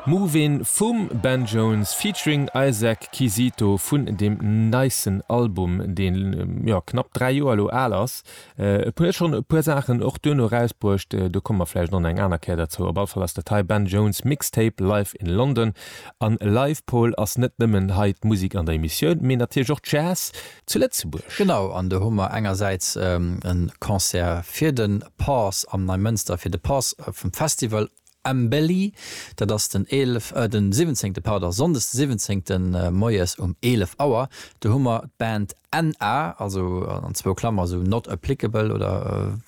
Movin' vum Ben Jones featuring Isaac Quisito vun dem neisten Album, dee jo knapp 3 Joer elo al ass. Et huet schonn e puer Saachen och duerno erausbruecht, do komme mer vläicht och nach eng aner Kéier derzou. Op alle Fall ass dat hei Ben Jones Mixtape Live in London. An Live Paul ass net nëmmen hei d'Musek an der Emissioun, mee natierlech och Jazz, zu Lëtzebuerg. Genau, an do hu mer engersäits e Concert fir de Pass am Neimënster, fir de Pass vum Festival Embelli. Dat ass den 11, äh, den 17. Pardon, Sonndes de 17. Moies um 11 Auer. Do hu mer d'Band NA, also an zwou Klammer esou, Not Applicable oder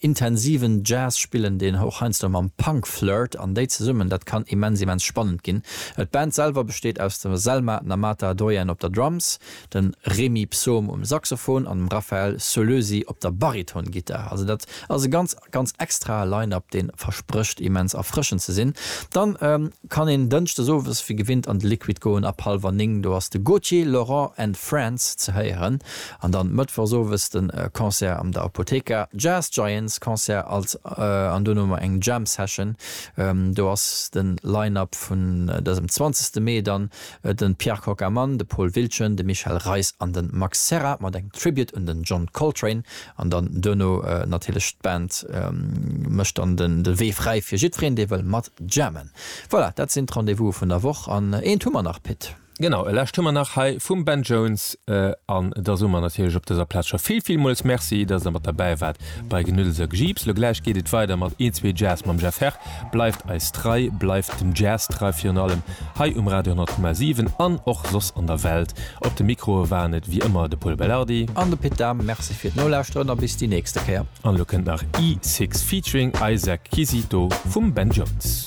Intensiven Jazz spillen deen Houch heiansdo mam Punk Flirt an déi zesummen, dat kann immens immens spannend ginn. D'Band selwer besteet aus der Selma Namata Doyen op der Drums, dem Remy Psaume um Saxophon an dem Raphaël Sollösi op der Bariton-Gittar. Also dat ass e ganz ganz extrae Line-Up deen versprécht immens erfrëschend ze sinn. Dann kann een Dënschdes owes wéi gewinnt an de Liquid goen, ab hallwer 9 do ass de Gauthier, Laurent and Friends ze héieren an dann Mëttwochs owes den Concert am der Apotheca Jazz Giants Concert als an dono mar eng Jam Session, do ass den Line Up vun dësem 20 Mee dann den Pierre Kockaman, de Paul Wiltgen, de Michel Reis an den Max Serra mat engem Tribute un den John Coltrane an dann dono natierlech d'Band mécht dann den Wee fräi fir jiddfereen dee wëll mat Jammen. Voilà, dat sinn d'Rendez-vouse vun der Woch. An eent hu mer nach, Pit. Genau, e lescht hu mer nach hei vum Ben Jones. An da soe mer natierlech op dëser Plaz scho vill, villmools Merci, dass Der mat derbäi waart bei Genuddels a Gejiips. Lo gläich geet et weider mat Een, Zwee Jazz mam Jeff Herr. Bleift eis trei, bleift dem Jazz trei, virun allem hei um Radio 10,7 an och soss an der Welt. Op de Mikroe waren et wéi ëmmer de Pol Belardi. An de Pit Dahm. Merci fir d'Nolauschteren a bis déi nächste Kéier. An elo kënnt nach E Six featuring Isaac Quisito vum Ben Jones.